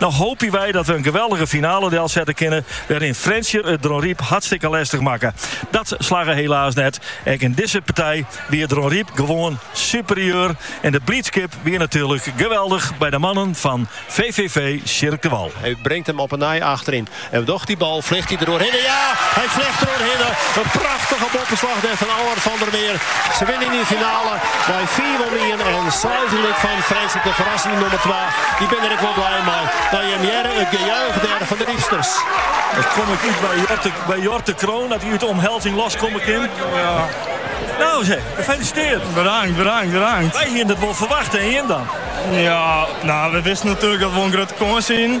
No hoopje wy dat we in geweldige finale delsette kinne, wêryn't Frjentsjer it Dronryp hartstikke lestich makke. Dat slagge helaas net. Ek yn dizze partij wie Dronryp gewoan superieur en de bliidskip wie natuerlik geweldich by de mannen fan VVV Sjirk de Wal. Hy bringt him op 'e nij achteryn. En doch dy bal fljocht hy der oerhinne. Ja, hy fljocht der oerhinne. In prachtige boppeslach der fan Allard van der Meer. Se winne yn de finale mei fiif om ien en seis gelyk fan Frjentsjer de ferrassende nûmer twa. Dy binne der ek wol bliid mei. No jim hearre it gejuich der fan de Rypsters. Ik kom ek út by Jort de Kroon at hy út de omhelzing los komme kin. No sa, gefelisiteard! Bedankt, bedankt, bedankt! Wy hiene it wol ferwachte en jim dan? Ja, we wisten natuerlik dat we wol in grutte kâns hiene.